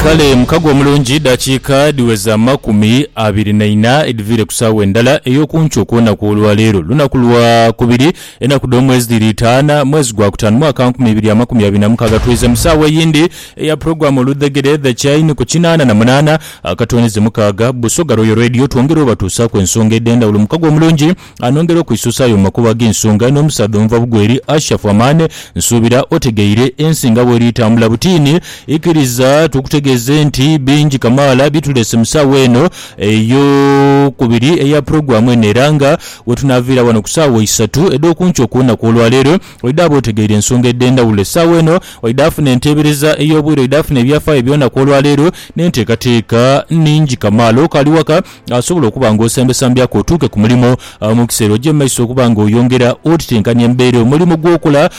Kale mukago omulungi dakiika dhiweza amakumi abiri na ina edhiviire ku saawa endala ey'oku nkyo ku lunaku olwa leero, lunaku lwa kubiri, enaku dh'omwezi dhiri itaana, mwezi gwa kutaanu, mwaka nkumi ibiri amakumi abiri na mukaaga. Twidhwiza mu saawa eyindi eya pulogulaamu Oludhegere, The Chain, ku kinaana na munaana akatooneze mukaaga. Busoga Royal Radio twongera obatuusaaku ensonga edh'endhawulo. Mukago omulungi. Anongera okwisuusaayo mu makubo ag'ensonga n'omusaadha omuva bugwe eri Ashafu Amane. Nsuubira otegeire ensi nga bw'eri etambula butiini. Ikiriza tukutegeeze nti bingi kamaala bye tuleese mu saawa eno ey'okubiri eya pulogulaamu eno era nga we tunaaviira wano ku saawa isatu edh'oku nkyo ku lunaku olwaleero, oidha abe otegeire ensonga edh'endhawulo. Essaawa eno oidha afuna enteebereza ey'obwire, oidha afuna ebyafaayo eby'olunaku olwaleero n'enteekateeka nhingi kamaala. Okaali waka? asobola okuba nga osembesambyaku otuuke ku mulimo mu kiseera oja mu maiso okuba nga oyongera otitenkanya embeera. Omulimo gw'okola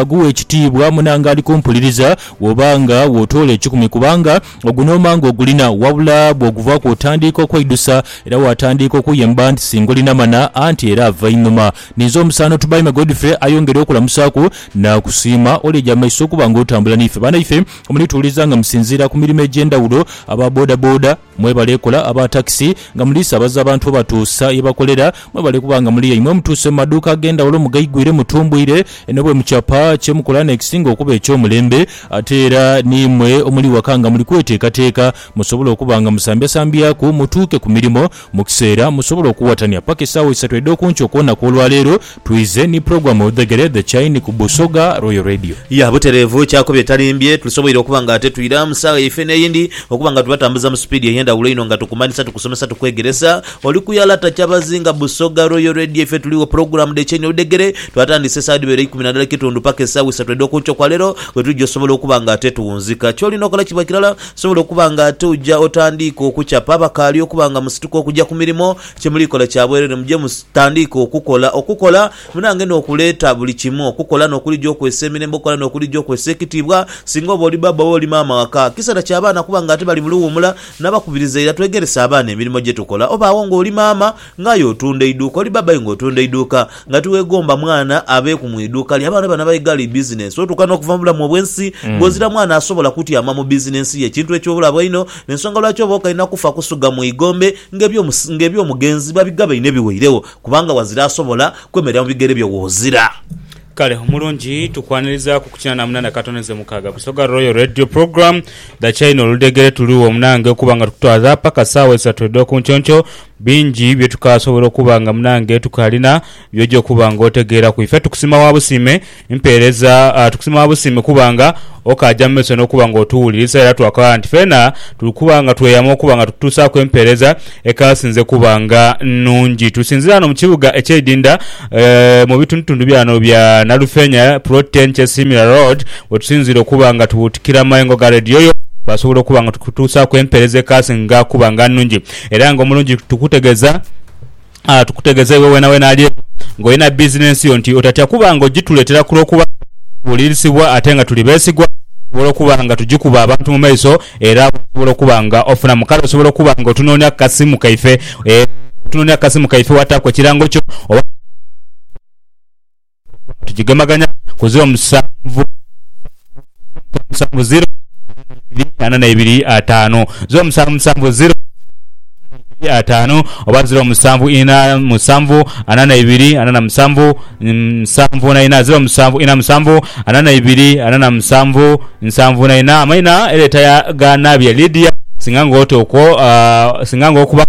guwe ekitiibwa munange ali kumpuliriza bw'oba nga w'otoola ekikumi kubanga ogwo n'oba nga ogulina wabula bw'oguvaaku otandiika okweidusa era waatandiika okuyemba nti singulina mana anti era ava einhuma. Ninze omusaano Tubaime Godfrey ayongere okulamusaaku naakusiima ol'eja mu maiso okuba nga otambula n'ife. Banaife munituwuliriza nga musinziira ku mirimo egy'endhawulo aba boda boda, Mwebale ekola aba takisi nga muli sabaza abantu obatuusa ye bakolera, mwebale kuba nga muli yaimwe mutuuse mu maduuka ag'endhawulo mugaigwire mutumbwire eno bwe mukyapa kye mukola n'ekisinga okuba eky'omulembe ate era n'imwe omuli waka nga muli kwetekateeka musobole okuba nga musambyasambyaku mutuuke ku mirimo mu kiseera musobole okuwatania paka esaawa isatu edh'okunkyo ku lunaku olwaleero Twize ni pulogulaamu Odhegere The Chain ku Busoga Royal Radio. Ya butereevu, kyakubiri etalimbye, tulisoboire okuba nga tetwira mu saagha yaife n'eyindi, okuba nga tubatambuza mu sipiidi ey'endhawulo inho nga tukumanhisa, tukusomesa, tukwegeresa. Oli ku ya lata Kyabazinga, Busoga Royal Radio, ife tuligho. Pulogulaamu The Chain Odhegere twatandise esaagha edhibeere eikumi na ndala ekitundu paka esaagha isatu edh'oku nkyo kwa leero bwe tuja osobola okuba nga ate tuwunzika. Ky'olina okola kiba kirala, sobola okuba nga ate oja otandiika okucapa abakaali okuba nga musituka okuja ku mirimo, Kye muli kola kya bwerere, muje mu tandiike okukola, okukola munange n'okuleeta buli kimu, okukola n'okulija okwesa emirembe, okukola n'okulija okwesa ekitiibwa. Singa oba oli bbaabba oba oli maama ghaka, kiseera kya baana kuba ng'ate bali mu luwuumula. Nabakubiriza ira twegerese abaana emirimo gye tukola. Oba agho ng'oli maama ng'aye otunda iduuka, oli bbaabba aye ng'otunda iduuka, Nga tiwegomba mwana abeeku mu iduuka lye, abaana bano abaigha li bizinensi otuuka n'okuva mu bulamu obw'ensi ng'ozira mwana asobola kutyama mu bizinensi ye, ekintu eky'obulabe einho. N'ensonga lwaki oba okaina kufa kusuga mu igombe ng'eby'omugenzi babigaba einho ebiweiregho, kubanga wazira asobola kwemerera mu bigere byo w'ozira. Kale omulungi tukwanirizaku kukina na munana katono ze mukaaga Busoga Royal Radio Program, Dhakyayina oludhegere tuligho munange okuba nga tukutwaza paka saawa isatu edhokunkyonkyoo. Bingi bye tukaasobola okuba nga munange tukaalina by'oja okuba ng'otegeeraku. Ife tukusima wa busiime mpeereza. Tukusima wa busiime kuba nga okaaja mu maiso n'okuba ng'otuwulirisa era twakaghala nti feena tuli kuba nga tweyama okuba nga tukutuusaaku empeereza ekaasinze kuba nga nnungi. Tusinziira ghano mu kibuga eky'eidinda mu bitundutundu bya ghano bya Nalufeenya, Plot Ten Kyesiimira Road, we tusinziira okuba nga tubuutikira amayengo ga leediyo yo, twasobola okuba nga tukutuusaaku empeereza ekaasinga kuba nga nnungi. Era nga omulungi tukutegeza ah, tukutegeza iwe wenawena ali eyo nga olina bizinensi yo nti otatya kuba nga ogituletera kulwokuba nga tubulirisibwa ate nga tuli besigwa osobola okuba nga tugikuba abantu mu maiso era osobola okuba nga ofunamu kale osobola okuba nga otunonia ku kasimu kaife eh, otunonia ku kasimu kaife wataaku ekirango kyo oba tugigemaganya ku ziro musanvu musanvu ziro ana na ibiri ataanu ziro musanvu musanvu ziro ataanu oba ziro musanvu ina musanvu ana na ibiri ana na musanvu musanvu na ina ziro musanvu ina musanvu ana na ibiri ana na musanvu nsanvu na ina amaina eleta ya ganabye Lydia singa nga oti okwo singa nga okuba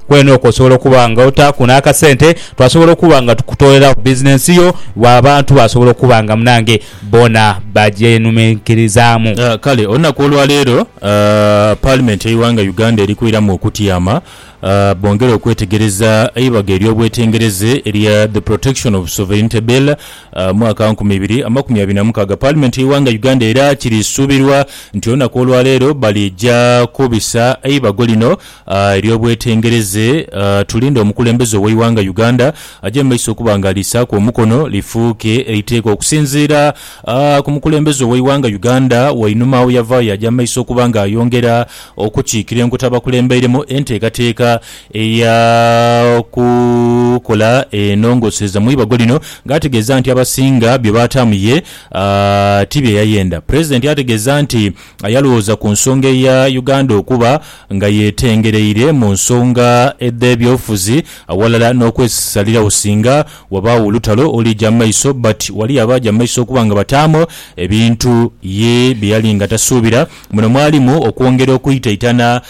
kwene okwo osobola okuba nga otaku n'akasente Twasobola okuba nga tukutoolerawo bizinensi yo, bwa abantu baasobola okuba nga munange boona bagyenuminkirizaamu. Kale olunaku olwa leero Paalimenti y'eighanga Uganda eri kwiramu okutyama bongere okwetegereza eibago ery'obwetengereze erya The Protection of Sovereignty Bill mwaka nkumi ibiri amakumi abiri na mukaaga. Paalimenti y'eighanga Uganda era kiri suubirwa nti olunaku olwa leero bali ja kubisa eibago lino. Eby'obwetengereze, Tulinde omukulembeze ow'eighanga Uganda aje mu maiso okuba nga aliisaaku omukono lifuuke eiteeka okusinziira ku mukulembeze ow'eighanga Uganda Wainuma awo yavaayo yaja mu maiso okuba nga ayongera okukiikira enkota abakulembeiremu enteekateeka ey'okukola enongosereza mu ibago lino nga ategeeza nti abasinga bye baataamu ye ti bye yayenda. Pulezidenti ategeeza nti. yalwooza ku nsonga eya Uganda okuba nga yetengereire mu nsonga edh'ebyobufuzi aghalala n'okwesisalirawo singa wabaagho olutalo olija mu maiso but wali abaaja mu maiso okuba nga bataamu ebintu ye bye yali nga tasuubira. Muno mwalimu okwongera okwitaitana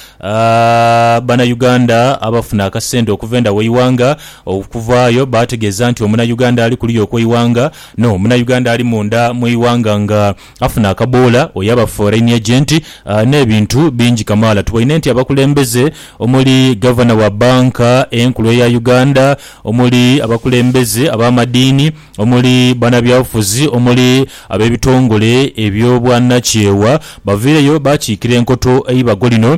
Banauganda abafuna akasente okuva enda w'eighanga okuvaayo baategeeza nti Omunauganda ali kuliya okw'eighanga no Munauganda ali munda mu ighanga nga Afuna akaboola oyo aba foreign agent n'ebintu bingi kamaala. Tuboine nti abakulembeze omuli Gavana wa Bbanka Enkulu eya Uganda, omuli abakulembeze ab'amadiini, omuli banabyabufuzi, omuli ab'ebitongole eby'obwanakyewa baviireyo baakiikira enkoto eibago lino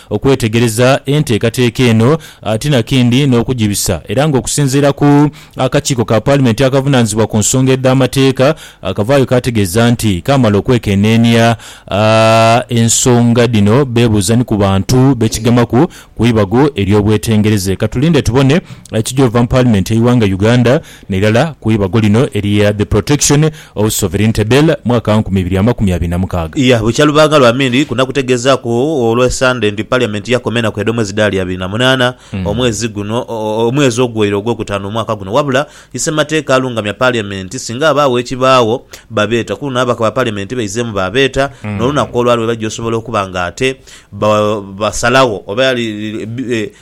Okwetegereza enteekateeka eno ate na kindi n'okugibisa era nga okusinziira ku akakiiko ka Paalimenti akavunaanyizibwa ku nsonga edh'amateeka akavaayo kaategeeza nti kaamala okwekeneenia ensonga dhino beebuuza ni ku bantu be kigemaku ku ibago ery'obwetengereze. Katulinde tubone ekigy'ova mu Paalimenti y'eighanga Uganda n'irala ku ibago lino erya The Protection of Sovereignty Bill, mwaka wa nkumi ibiri amakumi abiri na mukaaga. Iya bukya lubanga lwa Mindi ku naku tegezaaku olwe Sande nti Parliament yakoma enaku edhomwezi dhaali abiri na munaana omwezi guno omwezi ogweire ogwokutaano omwaka guno wabula isemateeka alungamya Parliament singa abaawo ekibaagho babeeta kuluno ababaka ba Parliament baizeemu baabeeta nolunaku olwali webaja osobola okuba nga ate basalagho oba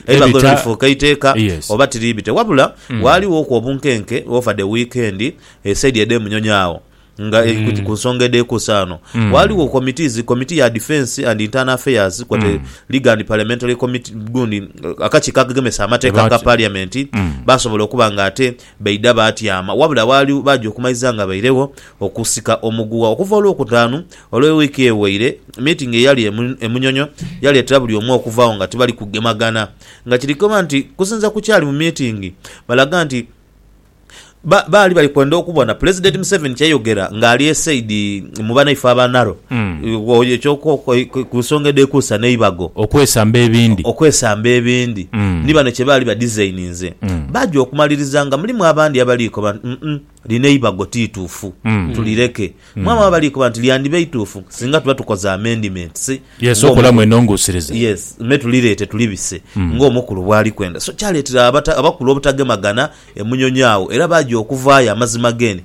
Eibago lino Ebita- lifuuka eiteeka Yes. oba tiriibite? Wabula waalighooku obunkenke over the weekend esaidi edh'e Munyonyo agho nga e- ku- ku nsonga edhekuusa ghano waaliwo committees committee ya defence and internal affairs kwote legal and parliamentary committee gundi eh, akakiiko akagemesa amateeka Lwaki? ka parliament basobola okuba nga ate Baidha baatyama, wabula waali baaja okumaiza nga bairegho okusika omuguwa. Okuva Olwokutaanu olwe wiiki eweire, miitingi eyali e Munyonyo yaleetera buli omu okuvaagho nga tibali kugemagana. Nga kiri koba nti kusinza ku kyali mu miitingi, balaga nti baali bali kwenda okubona Pulezidenti Museveni kyeyogera ng'ali e saidi. mu banaife aba Naro, ku nsonga edhekuusa n'eibago, okwesamba ebindi, okwesamba ebindi, ni bano kye baali badizaininze, baja okumaliriza nga mulimu abandi abali koba nti, Umm, lino eibago ti ituufu, tulireke. Mwabaamu abali koba nti, Lyandiba ituufu singa tuba tukoze amendiments me tulireete tulibise ng'omukulu bw'ali kwenda. So kyaleetera abakulu obutagemagana e Munyonyo agho era baja okuvaayo amazima geenhe.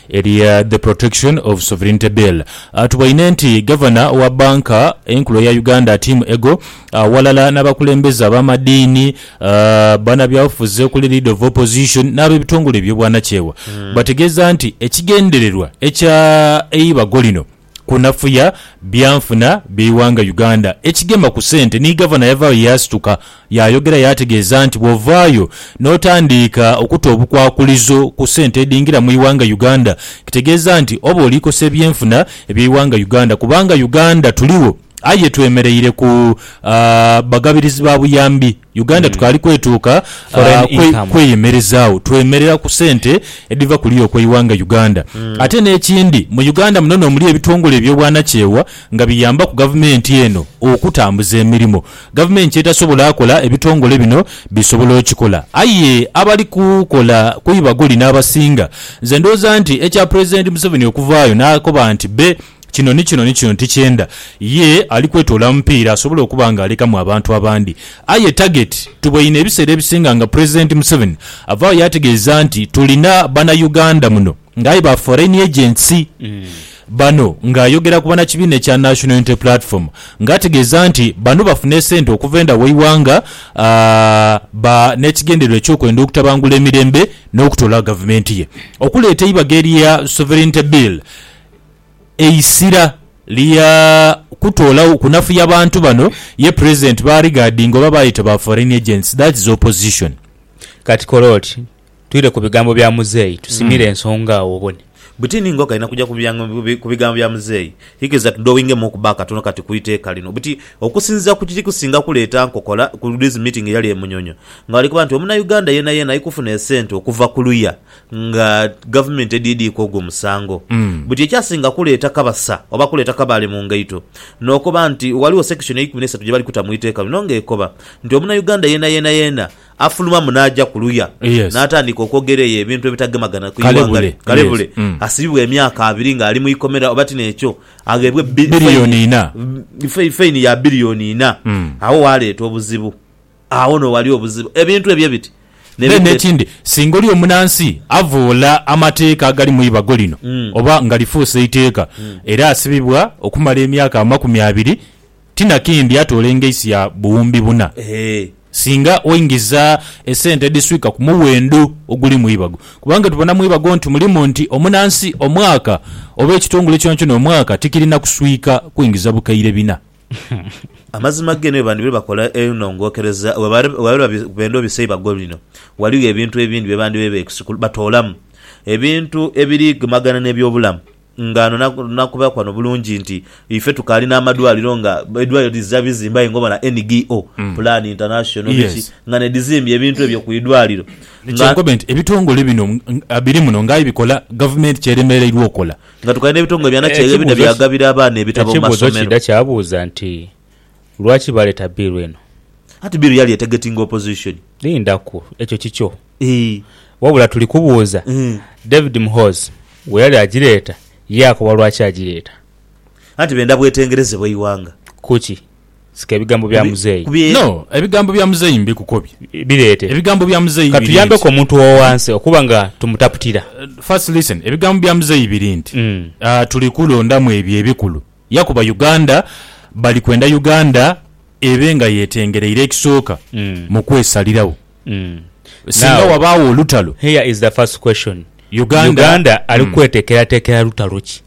Erya The Protection of Sovereignty Bill atubwaine nti Gavana wa Banka Enkulu eya Uganda Tim Ego aghalala n'abakulembeze ab'amadiini, banabyabufuzi okuli Leader of Opposition n'abebitongole ebyobwanakyewa bategeeza nti ekigendererwa ekya eibago lino, kunafuya byanfuna by'eighanga Uganda ekigema ku sente ni Gavana yavaayo yaasituka yaayogera yaategeeza nti bw'ovaayo n'otandiika okuta obukwakulizo ku sente edhingira mu ighanga Uganda kitegeeza nti oba oli kosa ebyenfuna eby'eighanga Uganda kubanga Uganda tuligho aye twemereire ku bagabirizi ba buyambi. Uganda tukaali kwetuuka ah, kwe- kweyemerizaagho, twemerera ku sente edhiva ku liyo kweighanga Uganda. Ate n'ekindi, mu Uganda muno n'omuli ebitongole eby'obwanakyewa nga biyambaku gavumenti eno okutambuza emirimo. Gavumenti ky'etasobola akola, ebitongole bino bisobola okikola. Aye abali kukola ku ibaguli n'abasinga. Nze ndowooza nti ekya Pulezidenti Museveni okuvaayo n'akoba nti be Kino ni kino ni kino ti kyenda. Ye ali kwetoola mupiira asobole okuba nga alekamu abantu abandi. Aye target tuboine ebiseera ebisinga nga President Museveni avaawo yaategeeza nti tulina bana Uganda muno nga aye ba foreign agents. Bano nga ayogera ku banakibiina ekya National Unity Platform nga ategeeza nti bano bafuna esente okuva enda w'eighanga ba n'ekigendererwa eky'okwenda okutabangula emirembe n'okutoola gavumenti ye. Okuleeta eibaga erya Sovereignty Bill, eisira lya kutoolagho kunafuya bantu bano ye president ba regardinga oba bayeta ba foreign agents that's opposition. Kati kole oti twire ku bigambo bya muzeeyi tusimire ensonga agho obone. Butini nga okaina kuja ku bigambo bya muzeeyi, ikiriza tudowingemuuku ba katono kati ku iteeka lino. Buti okusinziira ku kiri kusinga kuleeta nkokola ku these meeting eyali e Munyonyo nga bali kuba nti omunauganda yeenayeena aikufuna esente okuva ku luya nga gavumenti edhiidhiika ogwo musango. Buti ekyasinga kuleeta Kabasa oba kuleeta Kabaale mu ngaito n'okoba nti ghaligho section eikumi n'eisatu gye bali kuta mu iteeka lino ng'ekoba nti Omunauganda yeenayeenayena afulumamu n'aja ku luya n'atandika okwogera eyo ebintu ebitagemagana ku ighanga lye, kalebule asibibwe emyaka abiri ng'ali mu ikomera oba tin'ekyo agheebwe faini ya billion inha. Agho waaleeta obuzibu. Agho n'oghali obuzibu. Ebintu ebyo ebiti ne Aye biteeta. n'ekindi, singa oli omunansi avvoola amateeka agali mu ibago lino oba nga lifuuse iteeka era asibibwa okumala emyaka amakumi abiri, ti na kindi atoola engaisi ya buwumbi buna Eehee. singa oingiza esente edhiswika ku muwendo oguli mu ibago. Kubanga tubona mu ibago nti mulimu nti omunansi omwaka oba ekitongole kyonakyona omwaka tikirina kuswika kwingiza bukaire bina. Amazima ghe ni bandibire bakola enhongokereza bwe baaliba benda obisa eibago lino, ghaligho ebintu ebindi bye bandibaire beekusikuliza batoolamu ebintu ebirigemagana n'eby'obulamu. Nga ghano nakubaaku ghano bulungi nti ife tukaali n'amadwaliro nga edwaliro dhiza bizimbe aye nga obona NGO, Plan International biki nga n'edhizimbye ebintu ebyo ku idwaliro. Kyenkobe nti ebitongole bino biri muno nga aye bikola gavumenti ky'eremereirwa okola. Nga tukali n'ebitongole bya nakyeeyo ebidha byagabira abaana ebitabo mu masomero. Ekibuuzo kiidha kyabuuza nti, Lwaki baleeta bbiiru eno? Anti bbiiru yali etegetinga opozishoni. Lindaku, ekyo kikyo. Wabula tuli kubuuza, David Muhoozi bwe yali agireeta, yaakoba lwaki agireeta. Anti benda bwetengereze bw'eighanga. Kuki? Sika ebigambo bya muzeeyi. No, ebigambo bya muzeeyi mbikukobye. Bireete. Ebigambo bya muzeeyi biri nti. Katuyambeko omuntu ow'owansi okuba nga tumutaputira. First listen, ebigambo bya muzeeyi biri nti, tuli kulondamu ebyo ebikulu yakuba Uganda bali kwenda Uganda ebe nga yetengereire ekisooka mu kwesalirawo singa wabaawo olutalo. Here is the first question, Uganda ali kwetekeratekera lutalo ki?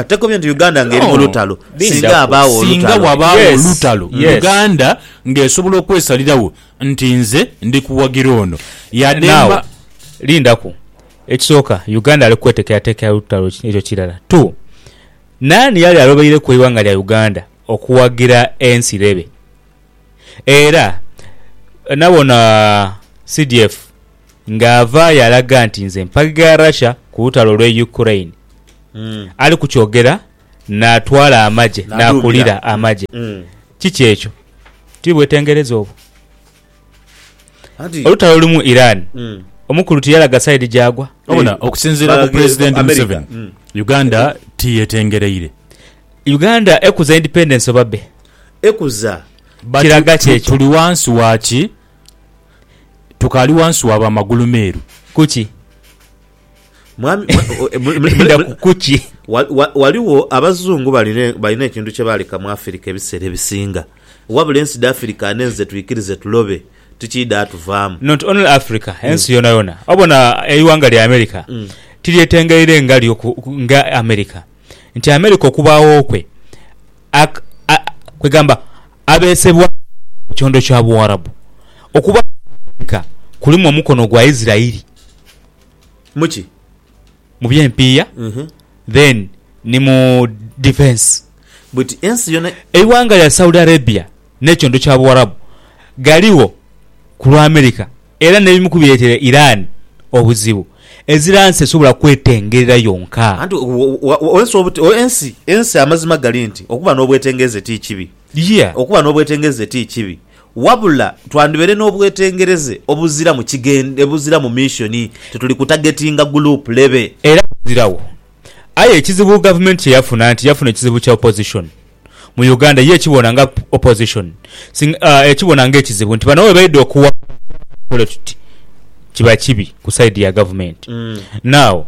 Tekobye nti Uganda nga eri mu lutalo. Singa abaawo olutalo. Singa wabaawo olutalo, Uganda nga esobola okwesalirawo nti nze ndi kuwagira ono. Yade mba. Lindaku. Ekisooka, Uganda ali kwetekerateekera lutalo. Ekyo kirala. Two, naani yali alobeireku eighanga lya Uganda okuwagira ensi lebe? Era nabona CDF nga ava yalaga nti nze mpagha Russia ku lutalo lwe Ukraine. Ali ku kyogera natwala amagye nakulira amagye. Kiki ekyo? Ti bwetengereza obwo? Olutalo luli mu Iran omukulu tiyalaga side gyagwa? Wabona okusinziira ku Pulezidenti Museveni, Uganda tiyetengereire. Uganda ekuza independence oba be ekuza. Kiraga ki ekyo? Tuli wansi wa ki? Tukaali wansi wa ba magulu meeru. Kuki? Mwami, Ndaku kuki? Waliwo abazungu balina ekintu kyebaaleka mu Afirika ebiseera ebisinga, wabula ensi dha Afirika nhenze twikirize tulobe tikiidha tuvaamu. Not only Africa, ensi hmm. yonayona. Obona eighanga lya America hmm. tiryetengeire nga lyo nga America. nti Amerika okubaagho kwe, kwegamba abeesebwayo mu kyondo kya Buwarabu, okubaagho kwa Amerika kulimu omukono gwa Isirairi. Muki? Mu by'empiiya then ni mu defence. Buti ensi yona. Eighanga lya Saudi Arabia n'ekyondo kya Buwarabu ghaligho ku lwa Amerika. Era n'ebimu ku bireetera Iran obuzibu, ezira nsi esobola kwetengerera yonka. Anti ensi, ensi amazima gali nti okuba n'obwetengereze ti kibi. Yea. Okuba n'obwetengereze ti kibi. Wabula twandibaire n'obwetengereze obuziramu kigend, obuziramu mission, tituli kutagetinga gulupu lebe. Era buzirawo Aye ekizibu gavumenti kye yafuna nti yafuna ekizibu kya opposition mu Uganda ye ekibona nga opposition singa ekibona nga ekizibu nti bano webaidha okuwangula tukola tuti kiba kibi ku side ya gavumenti. Now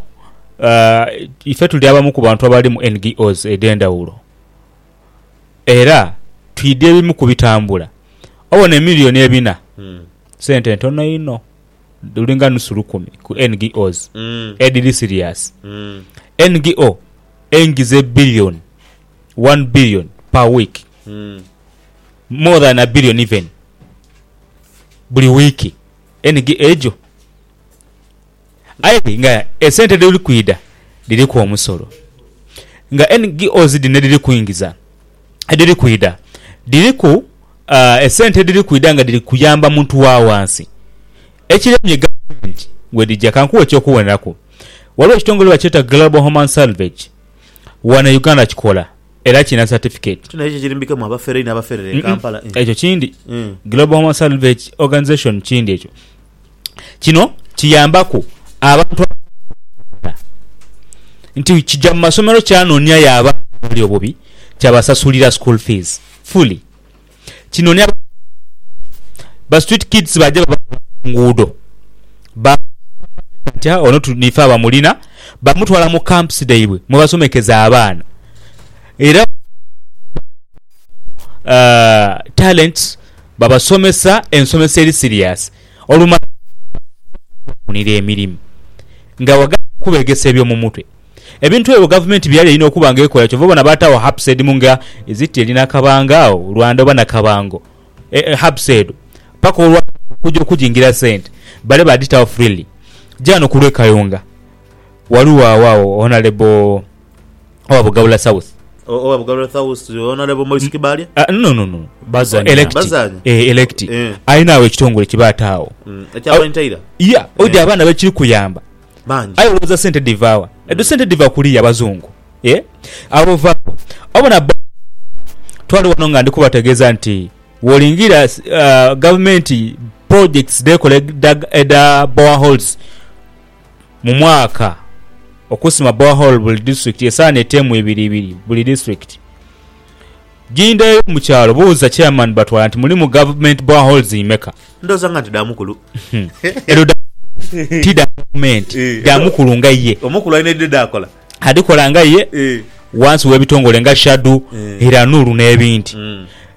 ife tuli abamu ku bantu abali mu NGOs edhendhawulo era twidha ebimu ku bitambula obona emillion ebina sente ntono inho. luli nga nusu lukumi ku NGOs edhiri siriasi. NGO eingiza ebilioni one billion per week, more than a billion even, buli wiiki NGO ejo. Aye nga esente dheri kwidha dhiriku omusolo. Nga NGOs dhino edhiri kwingiza, edhiri kwidha dhiriku Esente edhiri kwidha nga dhiri kuyamba muntu wa wansi ekiremye gavumenti we dhija. Ka nkuwe eky'okuwoneraku, waliwo ekitongole bwe bakyeta Global Human Salvage wano e Uganda kikola era kirina satifiketi. Kino ekyo ekirimbike mu abafere inho abaferera e Kampala? Ekyo kindi. Global Human Salvage Organization kindi ekyo. Kino kiyambaku abantu abatalina bisaala nti kija mu masomero kyanonia yo abaana abali obubi kyabasasulira school fees fully. Kino ni ba street kids baja babatwala ku nguudo ba nti ono niife abamulina bamutwala mu camps dhaibwe mwebasomekeza abaana era talents. babasomesa ensomesa eri siriasi olumala babakozesa okubafunira emirimu nga bagamba okubegesa ebyomumutwe. Ebintu ebyo gavumenti byeyali erina okuba nga ekola kyova obona baatawo hubs edimu nga is it eri Nakabanga awo Rwanda oba Nakabango hubs edho paka olwaleero nga okuja okujingira sente bale badhitawo freely. Gyaano kulwekayunga ghaligho agho Honalebo. owa Bugabula South. O- owa Bugabula South, Honorable Maurice Kibalya. Ah, no, no, no. Bazanya. Elect. Bazanya. Eh, elect. Eh. Alina awo ekitongole kye baataawo. Mm, ekya Bantaira. Ya, oja Eh. abaana bekiri kuyamba. Bangi. Aye olowooza sente dhivaawa? Edho sente dhiva kuliya abazungu. Eh? Abo vaawo. Obona bo twali wano nga ndi kubategeeza nti wolingira uh, gavumenti projects dhekola edha- edha boreholes mu mwaka okusima borehole buli disitulikiti esaana eteemu ibiri ibiri buli disitulikiti. Gindeyo mu kyalo buuza chairman batwala nti mulimu government boreholes imeka? Ndhoza nga nti dha mukulu. Edho dha ti dha gavumenti, Eh, dha mukulu nga ye. Omukulu alina edhidhe dhakola. Adhikola nga ye Eh. wansi w'ebitongole nga SHADU, Eh. Iranuru n'ebindi. Mm.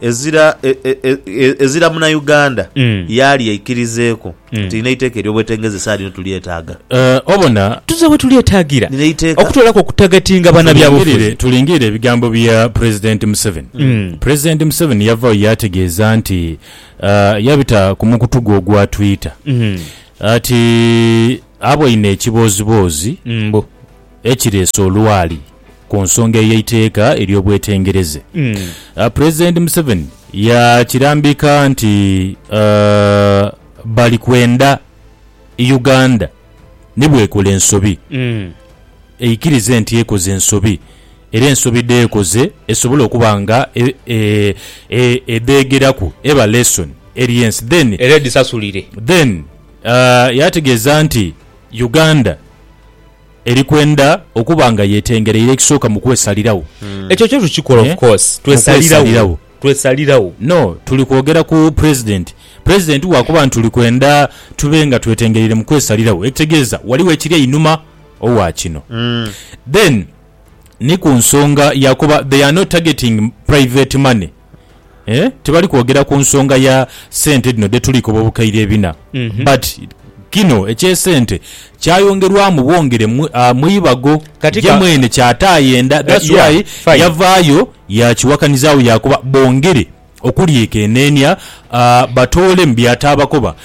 Ezira ezira muna Uganda yaali aikirizeeku nti nina eiteeka ery'obwetengeze esaala ino tulyetaaga. Obona tuze we tulyetaagira okutoolaku okutagatinga banabyabufuzi. Tulingirire ebigambo bya Pulezidenti Museveni. Pulezidenti Museveni yavaayo yaategeeza nti yabita ku mukutu gwe ogwa Twitter ati aboine ekibooziboozi, Ekireese olwali ku nsonga ey'eiteeka ery'obwetengereze, Pulezidenti Museveni yakirambika nti bali kwenda Uganda ni bw'ekola ensobi, eikirize nti ekoze ensobi era ensobi dh'ekoze esobole okuba nga edheegeraku eba lesson eri ensi then Era edhisasulire. Then yategeeza nti Uganda eri kwenda okuba nga yetengereire ekisooka mu kwesaliragho. Ekyo kyo tukikola of course, twesaliragho, twesaliragho. No, tuli kwogera ku President. President bwakuba nti tuli kwenda tube nga twetengereire mu kwesaliragho, ekitegeeza ghaligho ekiri einhuma ogha kino. Then ni ku nsonga ya kuba they are not targeting private money. tibali kwogera ku nsonga ya sente dhino dhe tuli koba obukaire ebina mhm. but kino ekyesente kyayongerwamu bwongere ah, mu ibago ye mwene kyatayenda eh, that's why yavaayo yakiwakanizaawo yakuba bongere okulyekenenia ah, batoole mu byataabakoba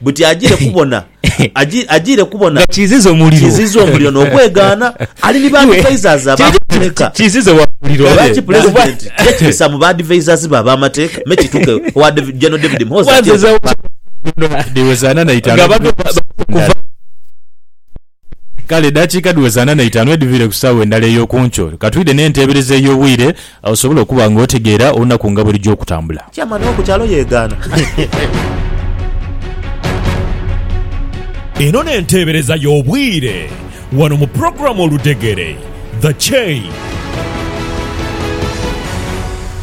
buti ajiire kubona, ajiire kubona nga kiiziza omuliro, kiiziza omuliro n'okwegaana. Ali ni baadivaizazi ab'amateeka, nga lwaki Pulezidenti yekirisamu baadivaizazi be ab'amateeka me kituuke owa General David Muhoozi ati eno? Kale edaakiika dhiweza ana na itaanu edhiviire ku saawa endala ey'oku nkyo, ka twidhe n'enteebereza ey'obwire osobole okuba nga otegeera olunaku nga bwe lugya okutambula. Chairman wo ku kyalo yegaana. Eno n'enteebereza y'obwire wano mu pulogulaamu Oludhegere, The Chain.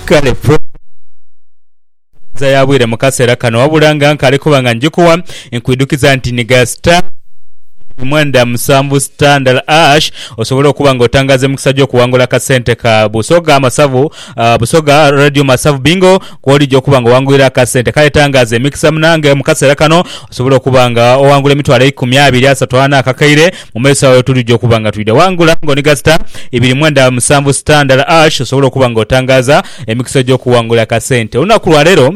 Kale pulogulaamu. Enkomereza ya bwire mu kaseera kano wabula nga nkaali kuba nga njikuwa, nkwidhukiza nti nhiga star ibiri mwenda musanvu star ndala ash osobole okuba nga otangaaza emikisa gy'okuwangula akasente ka Busoga Masavu Busoga Radio Masavu Bingo kw'olija okuba nga owangulira akasente. Kale tangaaza emikisa munange mu kaseera kano osobole okuba nga owangula emitwalo eikumi, abiri, asatu, ana akakaire. mu maiso agho tulija okuba nga twidha ghangula ng'oniga sita ibiri mwenda musanvu sita ndala ash osobole okuba nga otangaaza emikisa egy'okuwangula akasente. Olunaku lwa leero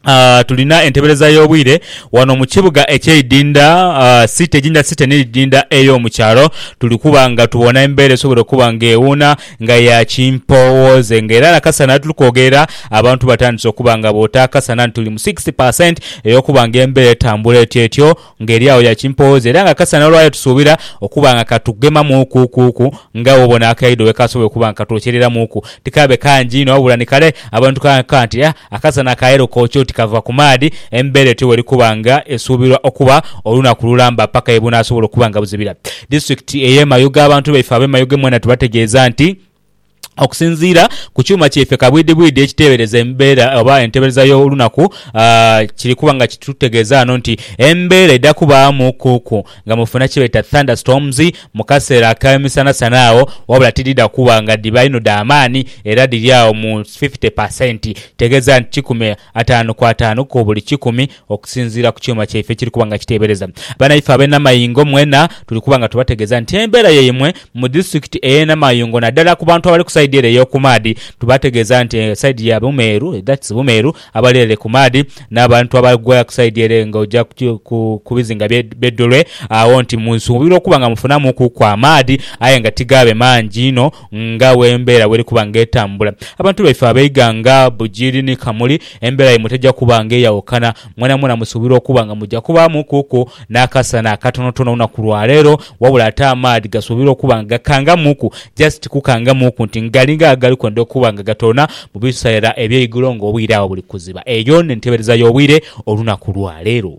ah, tulina entebereza y'obwire wano mu kibuga eky'eidinda ah, site Jinja Site n'eidinda ey'omu kyalo tuli kuba nga tubona embeera esobole okuba ng'ewuuna nga ya kimpoowooze nga era nakasana tuli kwogerera abantu batandise okuba nga boota akasana nti tuli mu 60 per cent ey'okuba nga embeera etambula etyetyo Ng'eri agho ya kimpooza era nga kasana olwayo tusuubira okuba nga ka tugemamuuku kuuku nga bw'obona akaidho bwe kasobola okuba nga katwokyereramuuku. Tikaabe kangi inho wabula ni kale abantu ni kaghanka nti a akasana akaayelo kookya oti kava ku maadhi. Embeera etyo bw'eri kuba nga esuubirwa okuba olunaku lulamba paka ye bunaasobola okuba nga buzibira. Disitulikiti ey'e Mayuge Abantu baife ab'e Mayuge mwena tubategeeza nti, Okusinziira ku kyuma kyaife kabwidhibwidhi ekiteebereza embeera oba entebereza y'olunaku, kiri kuba nga kitutegeeza ghano nti embeera edha kubaamu kuku nga mufuna kye beeta thunderstorms mu kaseera ak'emisanasana agho wabula tidhidha kuba nga dhiba inho dha maani era dhiri agho mu fifite pasenti. Kitegeeza nti kikumi Ataanu ku ataanu ku buli kikumi, okusinziira ku kyuma kyaife ekiri kuba nga kiteebereza. Banaife ab'e Namayingo mwena tuli kuba nga tubategeeza nti embeera yaimwe mu disitulikiti ey'e Namayungo naddala ku bantu abali ku sayidi ere ey'oku maadhi tubategeeza nti sayidi ya Bumeeru, that's Bumeeru, abali ere ku maadhi n'abantu abagwa ku sayidi ere ng'oja ku bizinga bye Bedolwe agho nti musuubirwa okuba nga mufunamuukuku amaadhi aye nga tigaabe mangi inho. Nga bw'embeera bw'eri kuba ng'etambula, abantu baife abeiga nga Bugiri ni Kamuli, embeera yaimwe teja kuba ng'eyawukana. Mwenamwena musuubirwa okuba nga muja kubaamukuku n'akasana akatonotono olunaku lwa leero, wabula ate amaadhi gasuubirwa okuba nga gakangamuku, just kukangamuku nti ngalinga agali kwenda okuba nga gatoona mu biseera eby'eigulo ng'obwire agho buli kuziba. Eyo n'entebereza y'obwire olunaku lwa leero.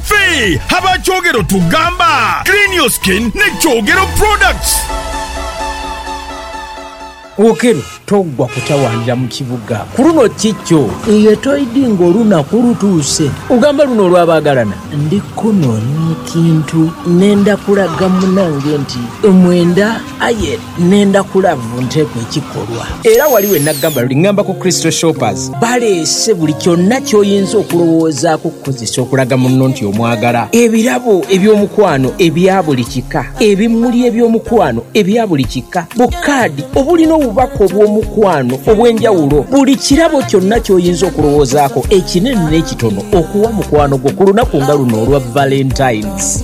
Ffe aba Kyogero tugamba clean your skin ne Kyogero products. Okello toggwa kutawaanira mu kibuga ku luno kikyo. Iye toidhi ng'olunaku lutuuse. Ogamba luno olwa baagalana. Ndi kunoonya ekintu, nenda kulaga munange nti omwenda aye. Nenda kulavu nteku ekikolwa. Era wali we nagamba luli ngamba ku Crystal Shoppers. Baleese buli kyonna ky'oyinza okulowoozaaku okukozesa okulaga munno nti omwagala. Ebirabo eby'omukwano ebya buli kika, ebimuli eby'omukwano ebya buli kika, bukaadi obulina obubaka obw'omukwano obw'enjawulo, buli kirabo kyonna ky'oyinza okulowoozaako, ekinene n'ekitono, okuwa mukwano gwo ku lunaku nga luno olwa Valentine's.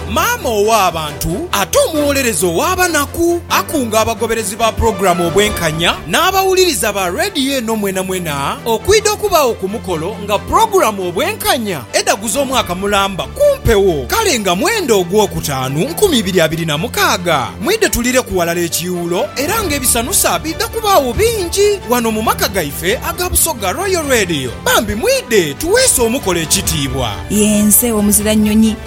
Maama ow'abantu ate omuwolereza ow'abanaku, akunga abagoberezi ba pulogulaamu Obwenkanya n'abawuliriza ba leediyo eno mwenamwena okwidha okubaagho ku mukolo nga pulogulaamu Obwenkanya edhaguza omwaka mulamba ku mpewo kale nga mwenda Ogwokutaanu nkumi ibiri abiri na mukaaga. Mwidhe tulireku ghalala ekiiwulo era nga ebisanusa biidha kubaagho bingi ghano mu maka gaife aga Busoga Royal Radio. Bambi mwidhe tuweese omukolo ekitiibwa. Ye nze omuzira nnyonyi.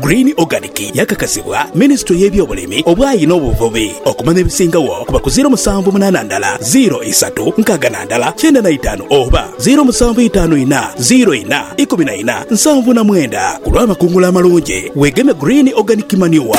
Green Organic yakakasibwa Minisitule y'ebyobulimi, obwayi n'obuvubi okumanya ebisingagho kuba ku ziiro musanvu munaana ndala ziiro isatu nkaaga na ndala kyenda na itaanu oba ziiro musanvu itaanu ina ziiro ina ikumi na ina nsanvu na mwenda ku lw'amakungula amalungi. Weegeme Green Organic Manure.